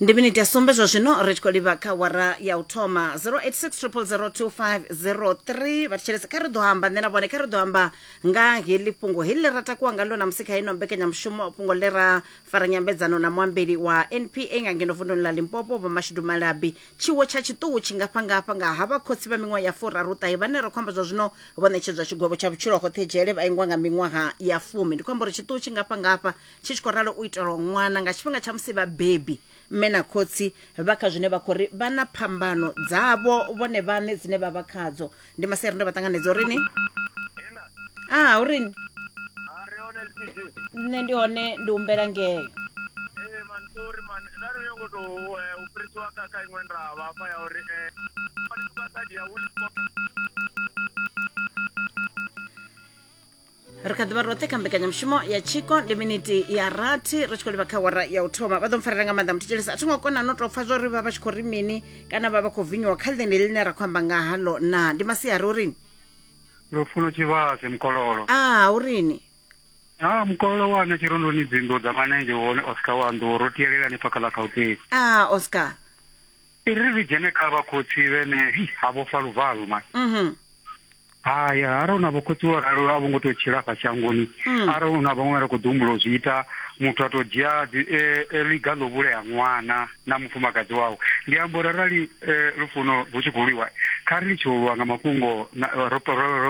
ndi miniti ya sumbe zwa zwino ri tshi khou livha kha wara ya u thoma 0860002503 vha thetshelese kha ri ḓo amba nṋe na vhone kha ri ḓo amba nga heḽi fhungo heḽi ḽi ra takuwa ngalo na musi kha ino mbekanyamushumo fhungo ḽi ra fara nyambedzano na muambeli wa npa nga ngeno vunduni ḽa limpopo vho mashudu malabi tshiwo tsha tshiṱuhu tshi ngafha ngafha nga ha vha khotsi vha miṅwaha ya furaru ṱahe vhane ra khou amba zwa zwino vho ṋetshedzwa tshigwevho tsha vhutshilo hoṱhe dzhele vha ingwa nga miṅwaha ya fumi ndi khou amba uri tshiṱuhu tshi ngafha ngafha Tshi tshi khou ralo u itelwa ṅwana nga tshifhinga tsha musi vhabebi, mme na khotsi, vha kha zwine vha khou ri vha na phambano dzavho vhone vhaṋe dzine vha vha khadzo. Ndi masia a re ndo vha ṱanganedza uri ni. Aa, u ri ni? Nṋe ndi hone, ndi humbela ngeo. ri kha ḓivha roṱhe kha mbekanyamushumo ya tshiko ndi miniti ya rathi ri tshi khou livha kha wara ya u thoma vha ḓo mpfarela nga maanḓa muthetshelesi a tho ngo kona no tou pfa zwauri vha vha tshi khou ri mini kana vha vha khou vinyiwa kha ḽine ḽine ra khou amba nga halo na ndi masiari u rini lufuno tshivhase mukololo a u rini ha mukololo wane tshirondoni dzinḓu dza manenzhe wone oscar wa nḓuwo ro tiyelelani pfa kha ḽa gauteng a oscar i ri ri dzhene kha vhakhotsi vhene ha vhofha luvalo mani hai arali na vhokhotsi wo ralo a vho ngo tou tshila fha shangoni hmm. arali na vhaṅwe ra khou ḓi humbula u zwi ita muthu a tou dzhia e, e, ḽiga ḽo vhulea ṅwana na mufumakadzi wawe ndi amba uri arali e, lufuno lu tshi khou lwiwa kha ri litshe u lwa nga mafhungo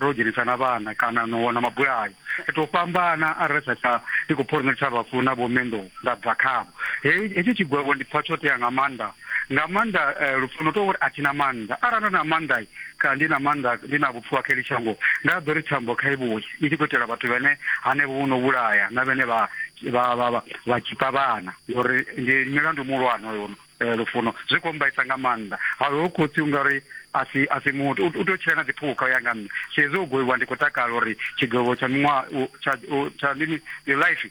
ro dzhenisa na vhana kana no wana mabulayo ri tou fhambana arali sa tsha ndi khou phori nṋe tsha vhafuna vho mendo nda bva khavho hetsho tshigwevho ndi pfa tsho tea nga maanḓa nga maanḓa eh, lupfu no tou uri a thi na maanḓa arali ndo na maanḓa kha ndi na maanḓa ndi na vhupfu ha kheli shango nda ḓo ri thambo kha ivhuye i tshi khou itela vhathu vhene hanevho vho no vhulaya na vhene vha vha vha vha vha tshipa vhana ngori ndi milandu muhulwane hoyo eh, lufuno zwi khou mbaisa nga maanḓa haho khotsi ungari a si a si muthu u tea u tshila na dziphukha u ya nga nṋe so hezwi o goiwa ndi khou takala uri tshigwevho tsha miṅwaha u- tsha u- tsha mini your life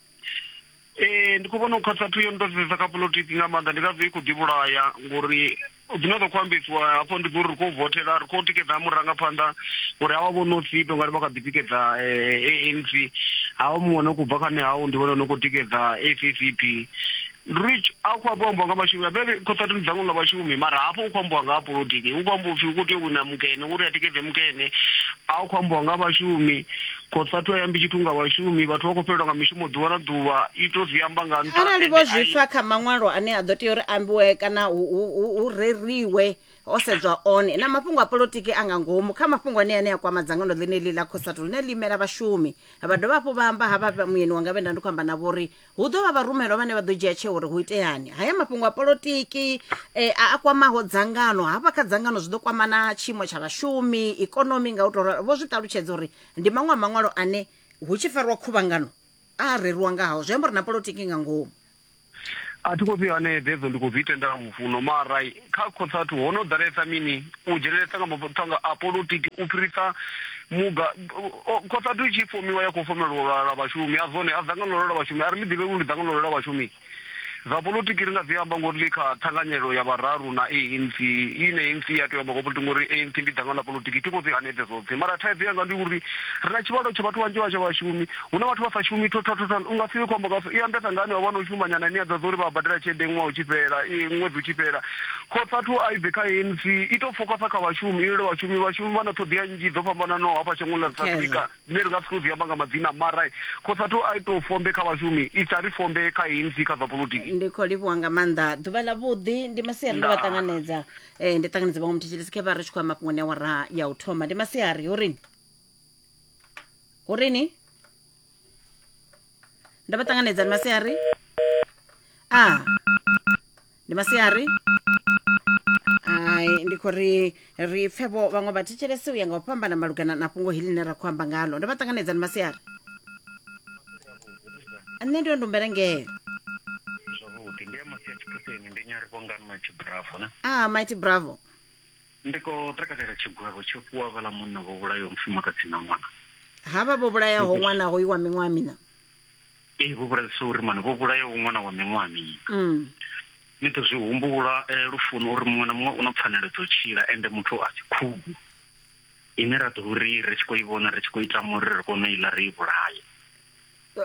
ee ndi khou vhona u khatsathu yo nḓadzisesa kha politiki nga maanḓa ndi ngazwo i khou ḓivhulaya ngori dzine dza khou ambesiwa hafho ndi uri ri khou votela ri khou tikedza murangaphanḓa uri hawa vho no sito ngari vha kha ḓi tikedza ANC hawa muṅwe no khou bva kha nehau ndi vhone no khou tikedza ACCP Ndi uri a khou hafhu ambiwa nga vhashumi a vhe khothatini dzangwe nga vhashumi mara hafho u khou ambiwa nga ha polotiki hu khou ambiwa upfhi hu khou tea u wina mukene uri a tikedze mukene a khou ambiwa nga vhashumi khothathu a yambi tshithu nga vhashumi vhathu vha khou fhelelwa nga mishumo ḓuvha na ḓuvha i to zwi amba nga nṱha arali vho zwi fa kha maṅwalo ane a ḓo tea uri ambiwe kana hu reriwe ho sedzwa one na mafhungo a polotiki a nga ngomu kha mafhungo ane ane a kwama dzangano ḽine ḽi ḽa khosatu ḽine ḽi imela vhashumi vha dovha hafhu vha amba ha vha muyeni wanga vhe nda ndi khou amba na vhori hu ḓo vha vharumelwa vhane vha ḓo dzhia tsheo uri hu iteani haya mafhungo a polotiki eh, a a kwamaho dzangano hafha kha dzangano zwi ḓo kwama na tshiimo tsha vhashumi ikonomi nga u tou ralo vho zwi ṱalutshedza uri ndi maṅwe a maṅwalo ane hu tshi fariwa khuvhangano a a reriwa nga hao zwi amba uri na polotiki nga ngomu a thi khou fhiwa ane dzedzo ndi khou dzi tenda lufuno mara Kha Khotsatu ho no ḓalesa mini u dzhenelesa nga mathanga a polotiki u fhirisa muga Khotsatu i tshi fomiwa ya khou fomela lwalwala lwa vhashumi a zwone a dzangalelo lwa vhashumi a ri ḽi ḓivhe uri ndi dzangalelo lwa vhashumi zwa polotiki ri nga zwi amba ngori ḽi kha thanganyelo ya vhararu na ANC ine ANC ya tea u amba nga polotiki ngori ANC ndi dzangano ḽa polotiki thi khou zwi hanedze zwoṱhe mara thaidzo yanga ndi uri ri na tshivhalo tsha vhathu vhanzhi vha tsha vhashumi Hu na vhathu vha sa shumi thothothotho. U nga si vhe khombo nga u i ambesa nga henevha vha no shuma nyana ine ya ḓadza uri vha badela tshelede ṅwaha u tshi fhela, i ṅwedzi u tshi fhela. Khotsathu a i bve kha ANC, i tou fokhasa kha vhashumi, i lwele vhashumi. Vhashumi vha na ṱhoḓea nnzhi dzo fhambananaho hafha shangoni ḽa South Africa dzine ri nga si tou dzi amba nga madzina mara khotsathu a i tou fombe kha vhashumi, i sa ri fombe kha ANC kha zwa polotiki. ndi khou livhuwa nga maanḓa ḓuvha ḽa vhuḓi ndi masiari ndo vha Ndaa. ṱanganedza eh, ndi ṱanganedza vhaṅwe muthetshelesi khe vha ri tshi khou ya mafhungoni a wara ya u thoma ndi masiari ho rini hu ri ni ndo vha ṱanganedza ndi masiari a ndi masiari ai ndi khou ri ri pfe vho vhaṅwe vha thetshelese u ya nga u fhambana malugana na fhungo heḽi ḽine ra khou amba ngalo ndo vha ṱanganedza ndi masiari nṋe ndi yo ndumbela ngeo zwavhuḓi ndi ya masia tshiphuseni ndi nyarivhongani matshibravo na a mighty bravo Ndi khou takalela tshigwevho tsho fhiwa vhaḽa munna vho vhulayaho mufumakadzi na ṅwana. Havha vho vhulayaho ṅwana hoyu wa miṅwaha mina. Ee, vho vhulayaho, sorry man, vho vhulayaho ṅwana wa miṅwaha mina. Mm. Ni ḓo zwi humbula eh, lufuni uri muṅwe na muṅwe u na pfanelo dzo tshila ende muthu a si khugu ine ra ḓo ri ri tshi khou i vhona ri tshi khou i tama uri ri kone u iḽa ri i vhulaye.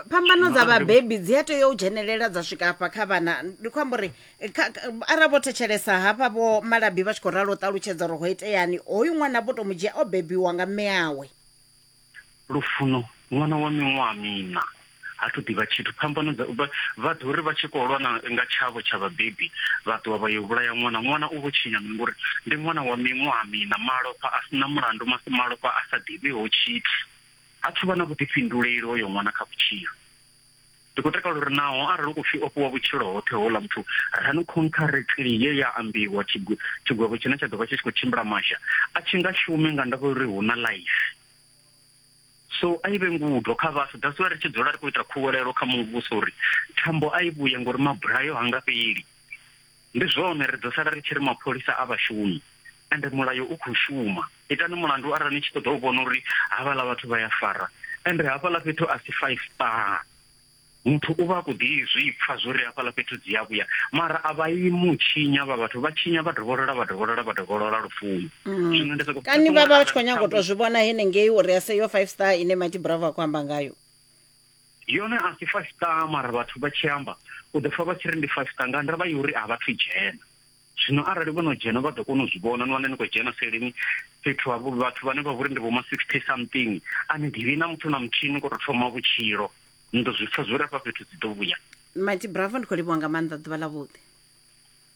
phambano dza vhabebi dzi a tea u dzhenelela dza swika hafha kha vhana ndi khou amba uri eh, kha- kha- arali vho thetshelesa hafha vho malabi vha tshi khou ralo u ṱalutshedza uri ho iteani hoyu ṅwana vho to mu dzhia o bebiwa nga mme awe lufuno ṅwana wa miṅwaha mina ha thu ḓivha tshithu phambano dza vha- vha ḓo ri vha tshi khou lwa na- nga tshavho tsha vhabebi vha ṱuwa vha yo vhulaya ṅwana ṅwana u vho tshinya mini ngori ndi ṅwana wa miṅwaha mina malofha a sina mulandu mas- malofha a sa ḓivhiho tshithu Ha thu vha na vhuḓifhinduleli hoyo ṅwana kha vhutshilo. Ndi khou takala uri naho arali hu khou pfi o fhiwa vhutshilo hoṱhe houḽa muthu, ranu khontharekhli ye ya ambiwa, tshigwe, tshigwevho tshine tsha ḓo vha tshi tshi khou tshimbila masha, a tshi nga shume nga ndavha ya uri hu na ḽaifi. So a i vhe ngudo kha vhaswa. That's why ri tshi dzula ri khou ita khuwelelo kha Muvhuso uri thambo a i vhuye ngori mabulayo ha nga fheli. Ndi zwone ri ḓo sala ri tshi ri mapholisa a vha shumi ende mulayo u khou shuma. Itani mulandu arali ni tshi ṱoḓa u vhona uri havhaḽa vhathu vha ya fara ende hafhaḽa fhethu a si five star. Muthu u vha a khou ḓi zwi pfa zwo ri hafhaḽa fhethu dzi a vhuya mara a vha imi u tshinya havha vhathu vha tshinya vha dovholola vha dovholola vha dovholola lufuni. Zwino ndi soko Kani vha vha vha tshi khou nyanga u tou zwi vhona henengei uri a se yo five star ine Mighty Bravo a khou amba ngayo. Yone a si five star mara vhathu vha tshi amba u ḓo pfha vha tshi ri ndi five star nga ndavha yori a vhathu dzhena zwino arali vho no dzhena vha ḓo kona u zwi vhona ni wane ni khou dzhena seleni fhethu ha vhathu vhane vha vhori ndi vho ma sixty something a ni ḓivhi na muthu na muthihi ni khou tou thoma vhutshilo ni ḓo zwi pfha zwi uri afha fhethu dzi ḓo vhuya mati bravo ndi khou livhuwa nga maanḓa ḓuvha ḽa vhuḓi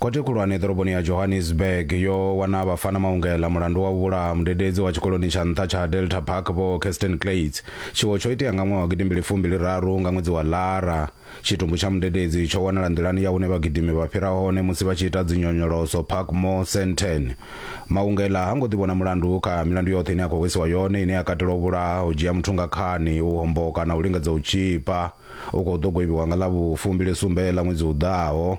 Khothe khulwane ḓoroboni ya Johannesburg yo wana vhafana maungela mulandu wa u vhulaha mudededzi wa tshikoloni tsha nṱha tsha Delta Park Vho Kirsten Kleytz. Tshiwo tsho itea nga ṅwaha wa gidimbili fumbili raru nga ṅwedzi wa Lara. Tshitumbu tsha mudededzi tsho wanala nḓilani ya hune vhagidimi vha fhira hone musi vha tshi ita dzinyonyoloso Parkmore Sandton. Maungela ha ngo ḓi vhona mulandu kha milandu yoṱhe ine a khou hwesiwa yone ine ya katela u vhulaha, u dzhia muthu nga khani, u homboka na u lingedza u tzhipa. U khou ḓo goibiwa nga ḽa vhu fumbili sumbe ḽa ṅwedzi u ḓaho.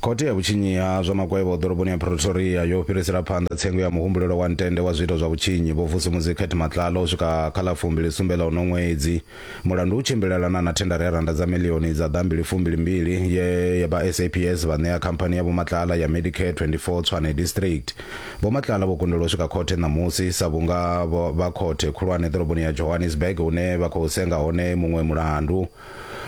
Khothe ya vhutshinyi ha zwa makwevho ḓoroboni ya Pretoria yo fhirisela phanḓa tsengo ya muhumbulelo wa ntende wa zwiito zwa vhutshinyi Vho Vusumuzi Kate Matlala u swika kha ḽa fumbili sumbe ḽa uno ṅwedzi. Mulandu u tshimbilelana na thendara ya rannda dza miḽioni dza ḓa mbili fumbili mbili ye vha SAPS vha ṋea khamphani ya Vho Matlala ya Medicare 24 Tshwane District. Vho Matlala vho kundelwa u swika khothe ṋamusi sa vhunga vha khothe khulwane ḓoroboni ya Johannesburg hune vha khou senga hone muṅwe mulandu.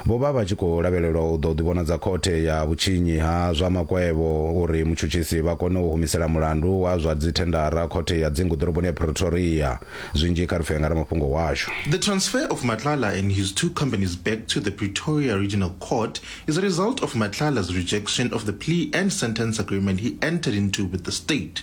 Vho vha vha tshi khou lavhelelwa u ḓo ḓivhonadza khothe ya vhutshinyi ha zwa makwevho uri mutshutshisi vha kone u humisela mulandu wa zwa dzithendara khothe ya dzingu ḓoroboni ya Pretoria. Zwinzhi kha ri pfe nga ramafhungo washu. The transfer of Matlala and his two companies back to the Pretoria Regional Court is a result of Matlala's rejection of the plea and sentence agreement he entered into with the state.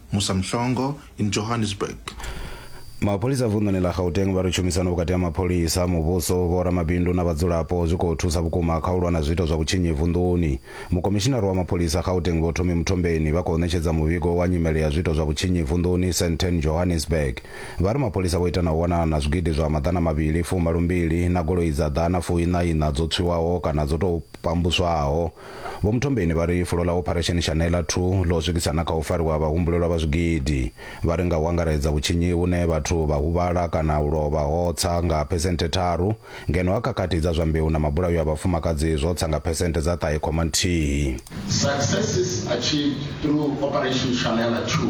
Musa Mhlongo in Johannesburg. Mapholisa vunḓuni ḽa Gauteng vha ri tshumisano vhukati ha mapholisa, muvhuso, vhoramabindu na vhadzulapo zwi khou thusa vhukuma kha u lwa na zwiito zwa vhutshinyi vunḓuni. Mukomishinara wa mapholisa Gauteng Vho Thomi Muthombeni vha khou ṋetshedza muvhigo wa nyimele ya zwiito zwa vhutshinyi vunḓuni Sandton Johannesburg. Vha ri mapholisa vho ita na u wanana na zwigidi zwa maḓana mavhili fumalo mbili na goloi dza ḓana fuiṋa iṋa dzo tswiwaho kana dzo tou pambuswaho. Vho Mthombeni vha ri fulo ḽa Opharesheni Shanela Thu ḽo swikisa na kha u fariwa ha vhahumbulelwa vha zwigidi. Vha ri nga u angaredza vhutshinyi hune vhathu vha huvhala kana u lovha ho tsa nga phesenthe tharu, ngeno ha khakhathi dza zwa mbeu na mabulayo a vhafumakadzi zwo tsa nga phesenthe dza ṱahe khoma nthihi. Successes achieved through Operation Shanela Thu.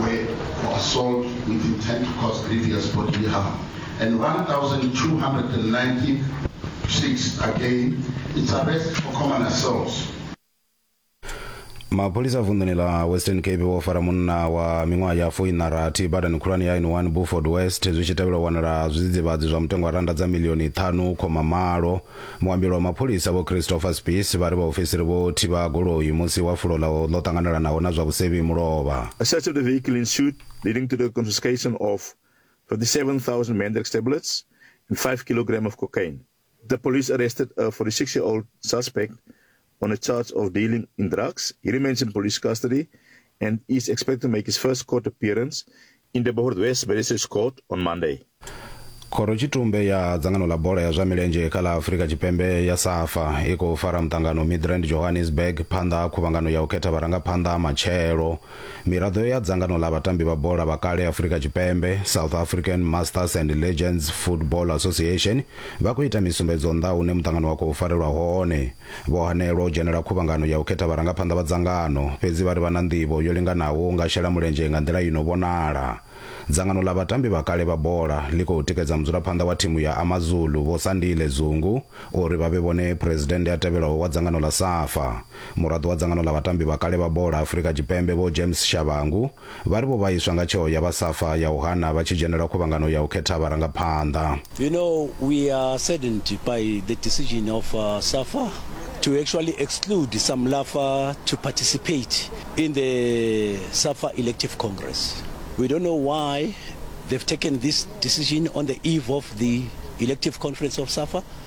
were for assault with intent to cause grievous bodily harm, and 1,296 again, it's arrest for common assault. mapholisa a vunḓuni la western cape vho fara munna wa miṅwaha ya foina rathi badani khulwane ya n1 buford west zwi tshi tevhela u wanala zwidzidzivhadzi zwa mutengo wa randa dza milioni ṱhanu khoma malo Muambeli wa mapholisa vho Christopher Spies vha ri vhaofisiri vho thivha goloi musi wa fulo ḽa ḽo ṱanganelanaho na zwa vhusevhi mulovha. A search of the vehicle ensued, leading to the confiscation of 57,000 Mandrax tablets and five kilograms of cocaine. The police arrested a 46-year-old suspect on a charge of dealing in drugs. He remains in police custody and is expected to make his first court appearance in the Bohort West Magistrates Court on Monday. khoro tshitumbe ya dzangano ḽa bola ya zwa milenzhe kha ḽa afurika tshipembe ya safa i khou fara muṱangano midrand johannesburg phanḓa ha khuvhangano ya u khetha vharangaphanḓa ha matshelo Miraḓo ya dzangano ḽa vhatambi vha bola vha kale Afurika Tshipembe, South African Masters and Legends Football Association, vha khou ita misumbedzo nnḓa ha hune muṱangano wa khou farelwa hone. Vho hanelwa u dzhenela khuvhangano ya u khetha vharangaphanḓa vha dzangano, fhedzi vha ri vha na nḓivho yo linganaho u nga shela mulenzhe nga nḓila i no vhonala. Dzangano ḽa vhatambi vha kale vha bola ḽi khou tikedza mudzulaphanḓa wa thimu ya AmaZulu, Vho Sandile Zungu, uri vha vhe vhone Phresidennde a tevhelaho wa dzangano ḽa Safa. Muraḓo wa dzangano ḽa vhatambi vha kale vha bola Afrika Tshipembe Vho James Shabangu vha ri vho vhaiswa nga tsheo ya vha Safa ya u hana vha tshi dzhenela khuvhangano ya u khetha vharangaphanḓa. You know, we are saddened by the decision of Safa to actually exclude some Lafa to participate in the Safa Elective Congress. We don't know why they've taken this decision on the eve of the Elective Conference of Safa.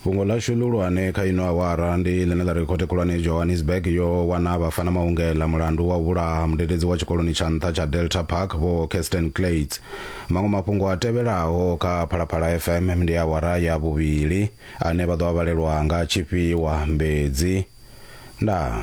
Fhungo ḽashu ḽihulwane kha ino awara ndi ḽine ḽa ri Khothe Khulwane Johannesburg yo wana Bafana Maungela mulandu wa u vhulaha mudededzi wa tshikoloni tsha nṱha tsha Delta Park Vho Kirsten Klades. Maṅwe mafhungo a tevhelaho kha Phalaphala FM ndi awara ya vhuvhili ane vha ḓo a vhalelwa nga Tshifhiwa Mbedzi. Ndaa.